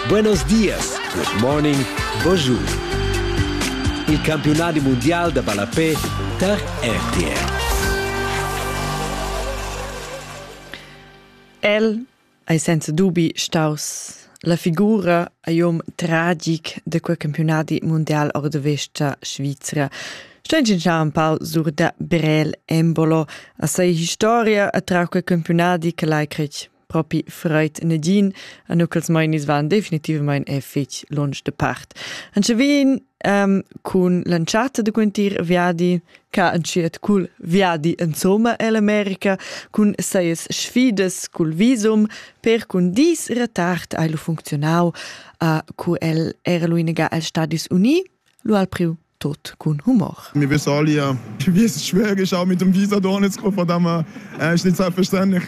Buenos dias, good morning, bonjour. Il campionati mondial da ballapé tar RTR. El ei senza dubi staus la figura a um tragic de quel campionati mondial or de vesta Svizra. Stengin Schampal sur da Brel Embolo a sei historia a trau quel campionati che l'hai cretg propi freit nedin a nucels mainis van definitivmain è fitg lunsch de part. An vin um, cun l'entschatta de quentir viadi, ca entschiet cul viadi insommaell'America, cun seies sfides cul visum, per cun dis retard ailu funzionau a cu el era luinega al Stadis Uni, lu al priu tot cun humor. Mi vis alia, wie es schwer, ich mit dem Visa dorn jetzt, verdammt, ich nicht selbstverständlich.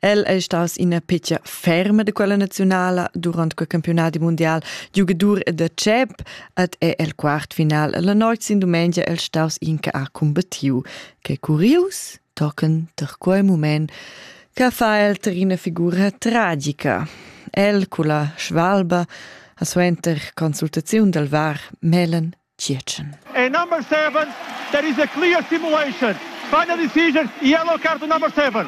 El ei staus ina petga ferma de quella naziunala duront quel campionadi mundial giugadur da tschep ed è el quartfinal la notg sin dumengia el staus inca a cumbattiu che curius tochen ter quei mument che fa el ter ina figura tragica. El culla svalba ha suenter consultaziun del var Mellen Tschiertschen. In number seven, there is a clear simulation. Final decision, yellow card to number seven.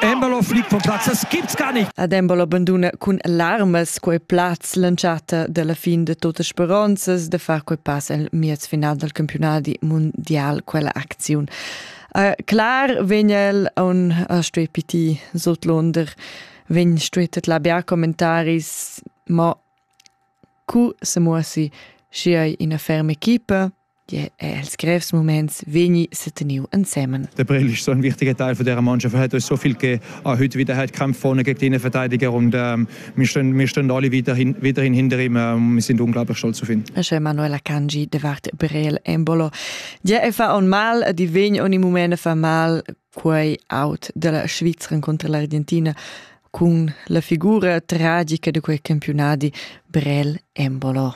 Embolo flick von plazzas gibt's gar nicht. Ad Embolo banduna cun larmas quei plaz l'entschatta dalla fin de totas speronzas de far quei pass el miez final dal campionati mundial quella acziun. Uh, clar vegn el un uh, stoi piti sot l'onder vegn stuetet la bia commentaris ma Cu semuossi schi ei ina ferma equipa, gie ei els grevs muments vegni seteniu ensemen. Der Brill ist so ein wichtiger Teil von dieser Mannschaft. Er hat uns so viel gegeben. Auch heute wieder hat Kampf vorne gegen den Verteidiger und ähm, wir, stehen, wir stehen alle weiterhin, weiterhin hinter ihm. Ähm, wir sind unglaublich stolz auf ihn. C'è Manuela Cangi de Vart Brill Embolo. Ja, e fa un mal, di vegn ogni momento fa mal, quei aut della Svizra contro l'Argentina cun la figura tragica di quei campiunadi Brel Embolo.